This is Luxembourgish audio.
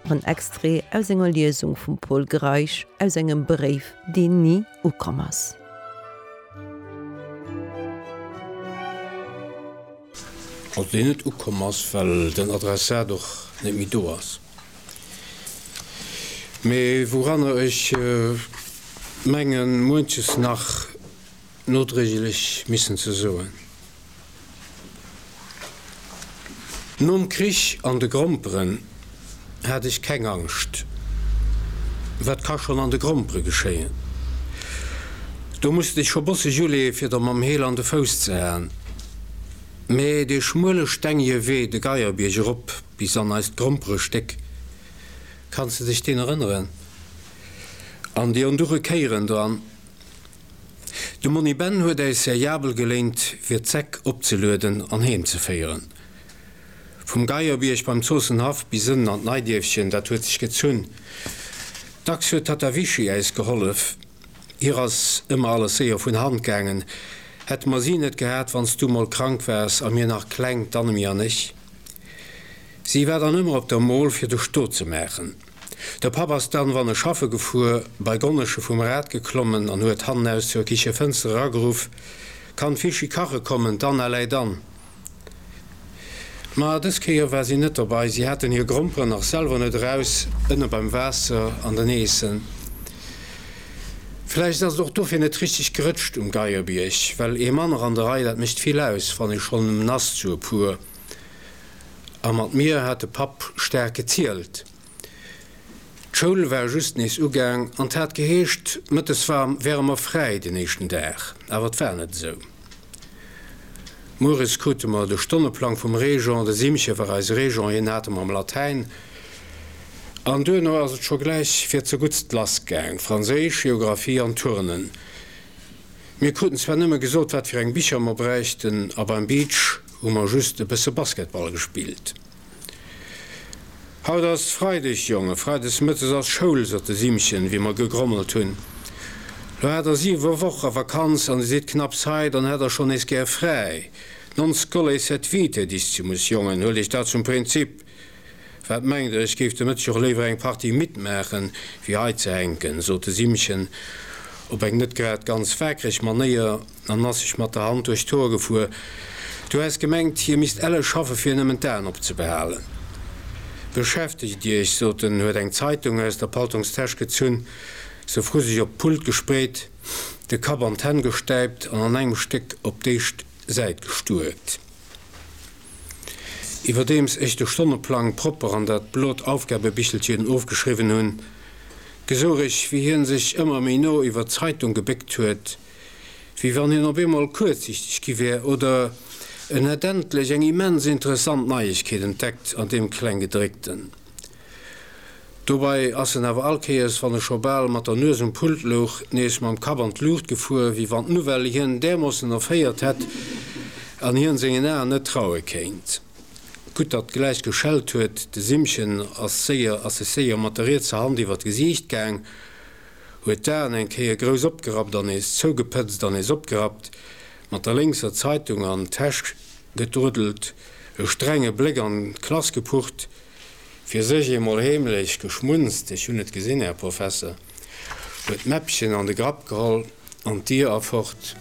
En Extrait aus enger Liesung vum Pol Greisch aus engem Bréif, deen ni ukomm ass. An deen net ukomm ass, well den Adressat och net méi do ass. Mee wouranner ech mengen, muenches nach nodréiglech missen ze soen. Nom Krich an de Gromperen hat ech keng Angscht, wat ka schonn an de Grompere geschéien? Do muss dech scho bosseg uleeë fir der mam Heel an de Fouss ze haen. Mä dee schmuele stengege Wee de Geierbierg erop bis an eist Gromperestéck, kanns de dech deen erënneren? An déi onduche Kéieren dran. De Monni Ben huet äis seriabel geléint fir d'Säck opzelueden an Heem ze féieren. Vum Geierbierg beim Zoossenhaff bis ënnen an d'Neidierfchen, dat huet sech gezunn. Dacks huet d'Tatta Vichy äis gehollef, hir ass ëmmer alles séier vun Hand gaangen. Hätte mer si net gehat, wann s du mol krank waars a mir nach kleng, d'Annemie an ech, si war dann ëmmer op der Mol fir de Stot ze maachen. De Papp ass dann, wann e schaffe gefuer, bei d'Gonnesche vum Rad geklommen an huet hannen aus zur Kichefënster erageruff, Kann d'Vichy kache kommen, d'Anna läit an. Ma dës Kéier war si net dobei, si haten hir Gromperen nach selwer net eraus, ënne beim Waasser an den Eessen. Vläicht ass et och dofir net richteg gerëtscht um Geierbierg, well ee manner an der Rei, dat mécht vill aus, wann ee schonn nass zu e puer. A mat mir hat de Papp staark gezielt. D'Schoul war just nees ugaang an 't hat geheescht, mëttes wäre mer fräi den éischten Dag. Awer 't war net esou. Mueres krute mer de Stonneplang vum Régent, de Simche war eise Régent, hien hat emmer am Latäin. An duerno ass et scho gläich fir zeguttst lass gaang, Franséisch, Geographie an Turnen. Mir kruten zwar nëmme gesot, wat fir eng Bicher mer bräichten a beim Beach, hu mer just e bësse Basketball gespillt. Haut ass Freideg, Jongen, Freides Mëttes ass Schoul, sot de Simchen, wéi mer gegrommelt hunn. Lo hat der siwe Woche Vakanz an Dir sidd knapps hei, dann hätt der schonn nees gär fräi. Non scoles sed vitae, Diszimus, Jongen, huel dech dat zum Prinzip. Wat mengt der, ech géif de Mëtteg och léiwer eng Partie midd maachen, wéi hei ze hänken, sot de Simmchen op eng net grad ganz waakreg Manéier an ass sech mat der Hand duerch d'Hoer gefuer. Du häss gemengt, hie misst elle schaffe fir nëmmen d'Aen op ze behalen. Beschäftegt Iech, sot en, huet eng Zeitung aus der Paltongstäsch gezunn, se vru sech op d'Pult gespreet, de Kapp an d'Hänn gestäipt an an engem Stéck op d'éischt Säit gestuerkt. Iwwerdeems ech de Stonneplang propper an dat blot Aufgabebichelchen ofgeschriwwen hunn, gesouch ech, wéi hien sech ëmmer méi no iwwert d'Zeitung gebéckt huet, wéi wann hien op eemol kuerzsichteg gi wär oder en hätt endlech eng immens interessant Neiegkeet entdeckt an deem Klenggedréckten. Dobei ass en awer all Kéiers, wann e scho bal mat der Nues um Pult louch, nees mam Kapp an d'Luucht gefuer, wéi wann d'Nouvelle hien därmoossen erféiert hätt an hien sengen Aen net traue kéint. Gutt, datt gläich geschellt huet. De Simmchen ass séier, ass sech séier mat der rietser Hand iwwer d'Gesiicht gaang, huet d'Aen eng Kéier grouss opgerappt an nees zougepëtzt an nees opgerappt, mat der lénkser Zeitung an d'Täsch gedruddelt, e strenge Bléck an d'Klass gepucht. Fir sech eemol heemlech geschmunzt, Ech hunn et gesinn, Här Professer! huet d'Mäppchen an de Grapp geholl an d'Dier a fort.